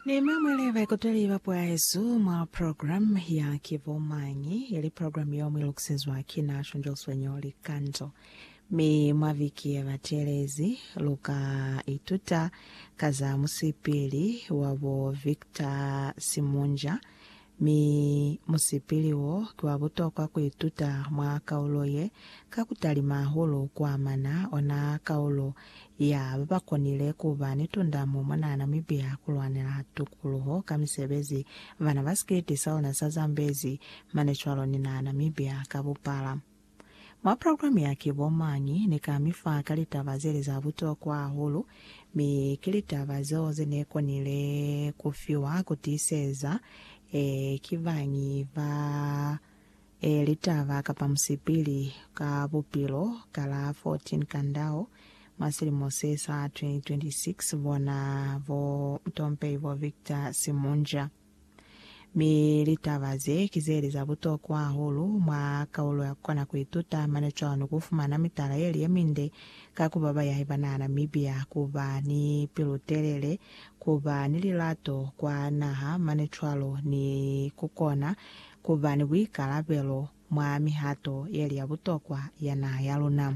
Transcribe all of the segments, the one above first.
Ni mamwele baikuteli ba puo ya hesu mwa program ya Ki Bo Mañi, ili program yeo muilukisezwa ki na Shangel Swenyo Likanzo. Mi mwa viki yebatelezi, luka ituta ka za musipili wabo Victor Simunja Mi musipili wo ki wa butokwa ku ituta mwa kaulo ye, ka ku talima hahulu ku amana ona kaulo ya ba ba konile ku ba ni tundamo mwa naha Namibia ku lwanela tukuluho ka misebezi ba na ba sikiliti sa ona sa Zambezi mane cwalo ni naha Namibia ka bupala. Mwa programe ya Ki Bo Mañi? ne ka mi fa ka litaba ze li za butokwa hahulu, mi ki litaba zeo ze ne konile ku fiwa ku tiiseza ee, ki bañi ba ee, litaba kapa musipili ka bupilo ka la 14 Kandao mwa silimo se sa 2026, bona bo mutompehi bo Victor Simunja. Mi litaba ze ki ze li za butokwa hahulu mwa kaulo ya kukona ku ituta mane cwalo ni ku fumana mitala ye li ye minde ka ku ba bayahi ba naha Namibia, ku ba ni pilu-telele, ku ba ni lilato kwa naha mane cwalo ni ku kona ku ba ni buikalabelo mwa mihato ye li ya butokwa ya naha ya luna.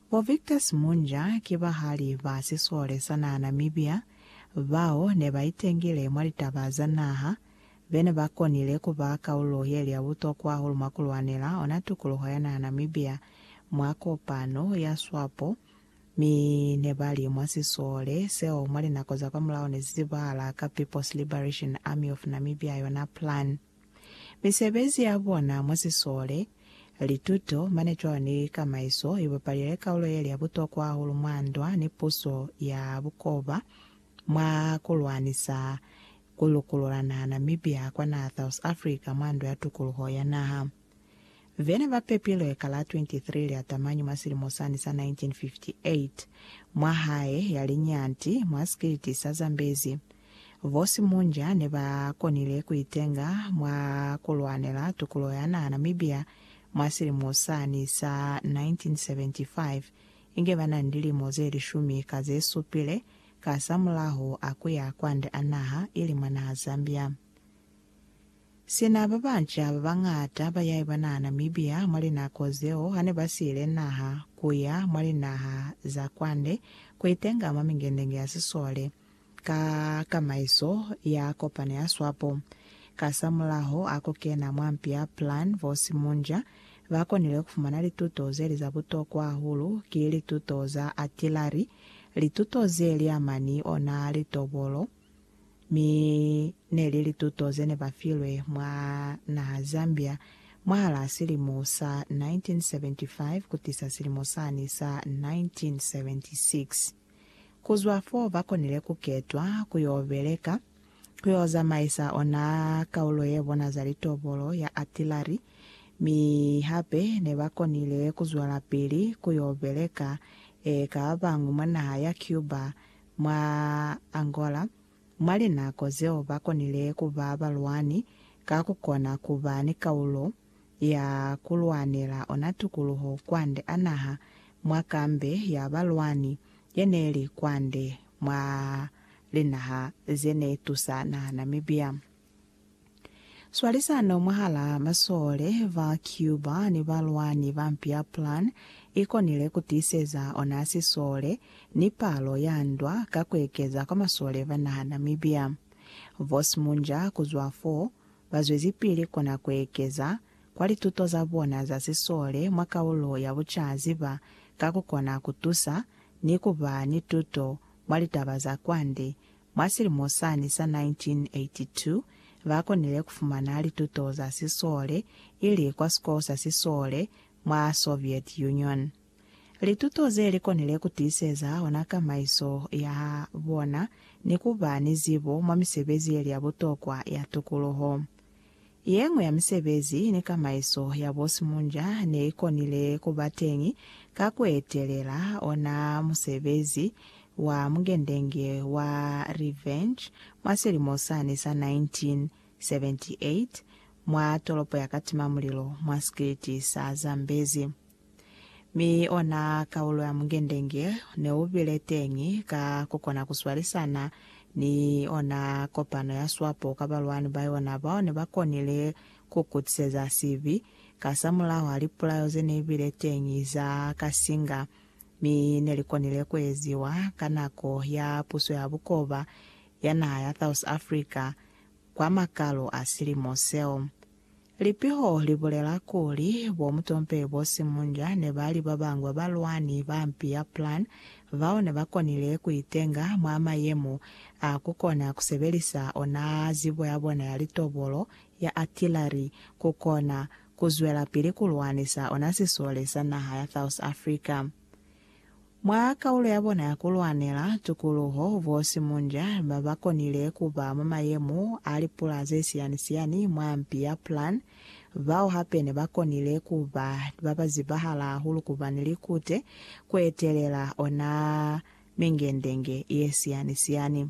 Bo Victor Simunja ki bahali ba sisole sa naha Namibia bao ne ba itengile mwa litaba za naha, be ne ba konile ku ba kaulo ye li ya butokwa hahulu mwa ku lwanela ona tukuluho ya naha Namibia mwa kopano ya Swapo, mi ne ba li mwa sisole seo mwa linako za kwamulaho ne si zibahala ka People's Liberation Army of Namibia yona PLAN. Misebezi ya bona mwa sisole, lituto, mane cwalo ni kamaiso i bapalile kaulo yeli ya butokwa hahulu mwa ndwa ni puso ya bukoba mwa ku lwanisa ku lukulula naha Namibia kwa naha South Africa mwa ndwa ya tukuluho ya naha. Vene ba pepilwe ka la 23 lia Tamañi mwa silimo sani sa 1958, mwa hae ya liñati, mwa sikiliti sa Zambezi. Bo Simunja ne ba konile ku itenga mwa ku lwanela tukulo ya naha Namibia mwa silimo sani sa 1975, inge ba na ni lilimo ze lishumi ka ze supile, kasamulaho a kuya kwande a naha, ili mwa naha Zambia. Sina ba banca ba bañata ba yaiba naha Namibia mwa linako zeo hane ba siile naha ku ya mwa linaha za kwande ku itenga mwa mingendenge ya sisole ka kamaiso ya kopano ya Swapo. Kasamulaho a ku kena mwa mpi ya Plan vo Simunja, ba konile ku fumana lituto ze li za butokwa hahulu, ki lituto za atilari, lituto ze li amani ona litobolo, mi neli lituto zene ba filwe mwa naha Zambia mwahalaa silimo sa 1975 kutisa silimo sani sa 1976. Kuzwa foo bakonile kuketwa kuyo beleka, kuyo zamaisa ona kaulo yebona za litobolo ya artillery, mi hape nebakonile kuzwelapili kuyo beleka eka babañwi mwa naha ya Cuba Mwa Angola, mwa linako zeo ba konile ku ba balwani ka ku kona ku ba ni kaulo ya ku lwanela ona tukuluho kwande a naha mwa kambe ya balwani ye ne li kwande mwa linaha ze ne tusa naha Namibia. Swalisano mwahalaa masole ba Cuba ni balwani ba mpi ya Plan i konile ku tiiseza ona sisole ni palo ya ndwa ka ku ekeza kwa masole ba naha Namibia. Boss Munja kuzwa fo, ba zwezipili kona ku ekeza kwa lituto za bona za sisole mwa kaulo ya bucaziba ka ku kona ku tusa ni ku ba ni tuto mwa litaba za kwande Mwa silimo sani sa 1982, ba konile ku fumana lituto za sisole, ili kwa sikolo sa sisole mwa Soviet Union. Lituto ze li konile ku tiiseza ona kamaiso ya bona ni ku ba ni zibo mwa misebezi ye li ya butokwa ya tukuluho. Yeñwi ya misebezi ni kamaiso ya bo simunja ne i konile ku ba teñi ka ku etelela ona musebezi wa mungendenge wa Revenge mwa silimo sani sa 1978 mwa tolopo ya Katimamulilo mwa sikiliti sa Zambezi. Mi ona kaulo ya mungendenge neubile teñi ka kukona kuswalisana ni ona kopano ya swapo ka balwani ba yona bao nebakonile kukutiseza sibi kasamulaho ha lipulayo zeneibile teñi za kasinga mi nelikonile kueziwa ka nako ya puso ya bukoba ya naha ya South Africa kwa makalo a silimo seo. Lipiho li bulela kuli, bo mutompe bo simunja ne ba li ba bangwe balwani ba mpi ya Plan bao ne ba konile ku itenga mwa mayemo a ku kona ku sebelisa ona zibo ya bona ya litobolo ya artillery ku kona ku zwelapili ku lwanisa ona sisole sa naha ya South Africa. Mwa kaulo ya bona ya ku lwanela tukuluho, bo Simunja ba ba konile ku ba mwa mayemo a lipula ze siyani-siyani mwa mpi ya Plan, bao hape ne ba konile ku ba ba ba zibahala hahulu ku ba ni likute ku etelela ona mingendenge ye siyani-siyani.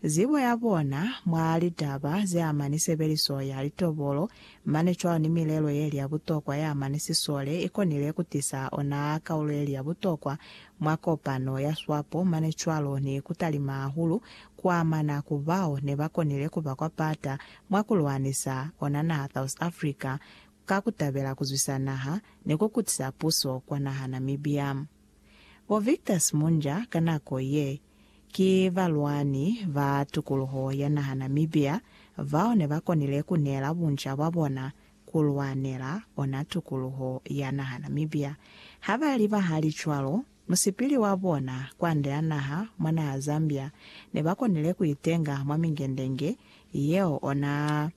zibo ya bona mwa litaba ze ama ni sebeliso ya litobolo, mane cwalo ni milelo ye li ya butokwa ye ama ni sisole, i konile ku tisa ona kaulo ye li ya butokwa mwa kopano ya swapo, mane cwalo ni ku talima hahulu ku amana ku bao ne ba konile ku ba kwa pata mwa ku lwanisa ona naha South Africa ka ku tabela ku zwisa naha ni ku kutisa puso kwa naha Namibia. Bo Victor Simunja ka nako ye, ki balwani ba tukuluho ya naha Namibia bao ne ba konile ku neela bunca bwa bona ku lwanela ona tukuluho ya naha Namibia. Ha ba li bahali cwalo, musipili wa bona kwande a naha mwa naha Zambia ne ba konile ku itenga mwa mingendenge yeo ona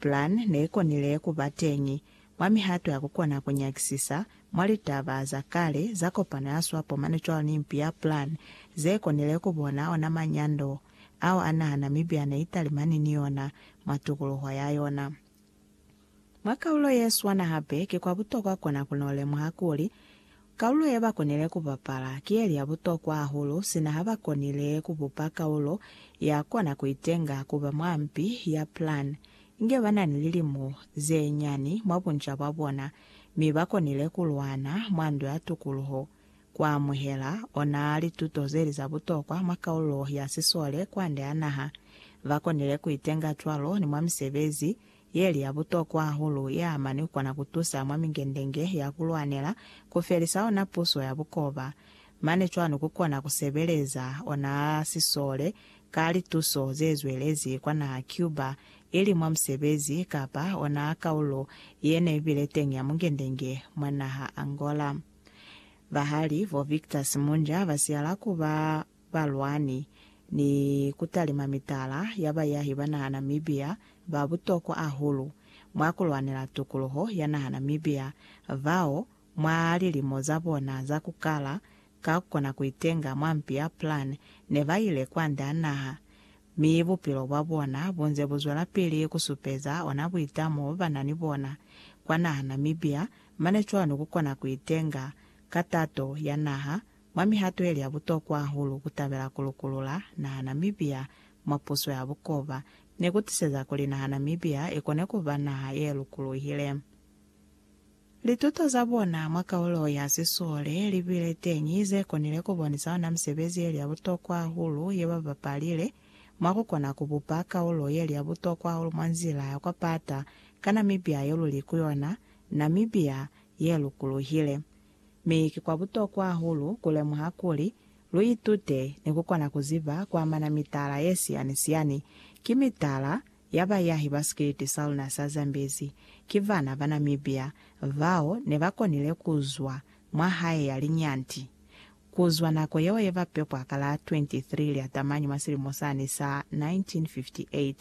Plan neikonile kuba teñi mwa mihato ya kukona kunyakisisa mwa litaba za kale za kopano ya swapo mane cwalo ni mpi ya Plan zekonile kubona ona manyando ao anaha Namibia neitalimani ni ona mwa tukuluho ya yona. Mwa kaulo yeswana hape kikwa butokwa kona kunolemuha kuli Kaulo ye ba konile ku bapala ki ye li ya butokwa hahulu sina ha ba konile ku bupa kaulo ya kona ku itenga ku ba mwa mpi ya Plan inge ba na ni lilimo ze nyani mwa bunca bwa bona mi ba konile ku lwana mwa Ndo ya Tukuluho ku amuhela ona lituto ze li za butokwa mwa kaulo ya sisole kwande ha naha. Ba konile ku itenga cwalo ni mwa misebezi Yeli ya butokwa hahulu ye amani kukona kutusa mwa mingendenge ya kulwanela kufelisa ona puso ya bukoba, mane cwanu kukona kusebeleza ona sisole ka lituso zezwelezi kwa naha Cuba, ili mwa musebezi kapa ona kaulo yene ibile teñi ya mungendenge mwa naha Angola. Bahali vo Victor Simunja basiyala kuba balwani, ni kutalima mitala ya bayahi ba naha Namibia ba butokwa hahulu mwa kulwanela tukuluho ya naha Namibia, bao mwa lilimo za bona za kukala ka kukona kuitenga mwa mpi ya Plan ne ba ile kwande a naha, mi bupilo bwa bona bunze buzwelapili kusupeza ona buitamo bo ba na ni bona kwa naha Namibia, mane cwalo ni kukona kuitenga ka tato ya naha Mwa mihato yeli ya butokwa hahulu, kutabela ku lukulula naha Namibia mwa puso ya bukoba ne ku tiseza kuli naha Namibia i kone ku ba naha ye lukuluhile. Lituto za bona mwa kaulo ya sisole li bile teñi ze konile ku bonisa ona misebezi yeli ya butokwa hahulu ye ba bapalile mwa ku kona ku bupa kaulo yeli ya butokwa hahulu mwa nzila ya kwa pata ka Namibia yo luli ku yona, Namibia ye lukuluhile. Mi ki kwa butokwa hahulu ku lemuha kuli, lu itute ni ku kona ku ziba ku amana mitala ye siyani-siyani, ki mitala ya bayahi ba sikiliti sa luna sa Zambezi, ki bana ba Namibia bao ne ba konile ku zwa mwa hae ya linyanti, Kuzwa nako yeo yeba pepwa ka la 23 Lyatamanyi mwa silimo sani sa 1958,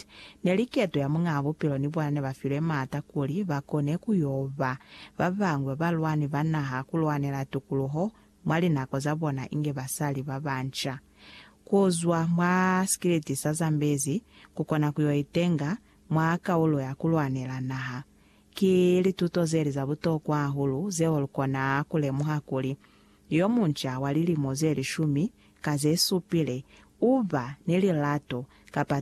neli keto ya Muñaa Bupilo ni bona nebafilwe maata kuli bakone kuyo ba babañwi babalwani ba naha kulwanela tukuluho mwa linako za bona inge basali babanca. Kuzwa mwa sikiliti sa Zambezi kukona kuyo itenga mwa kaulo ya kulwanela naha, ki lituto zeli za butokwa hahulu zeo lukona kulemuha kuli Yo munca wa lilimo ze lishumi ka ze supile u ba ni lilato kapa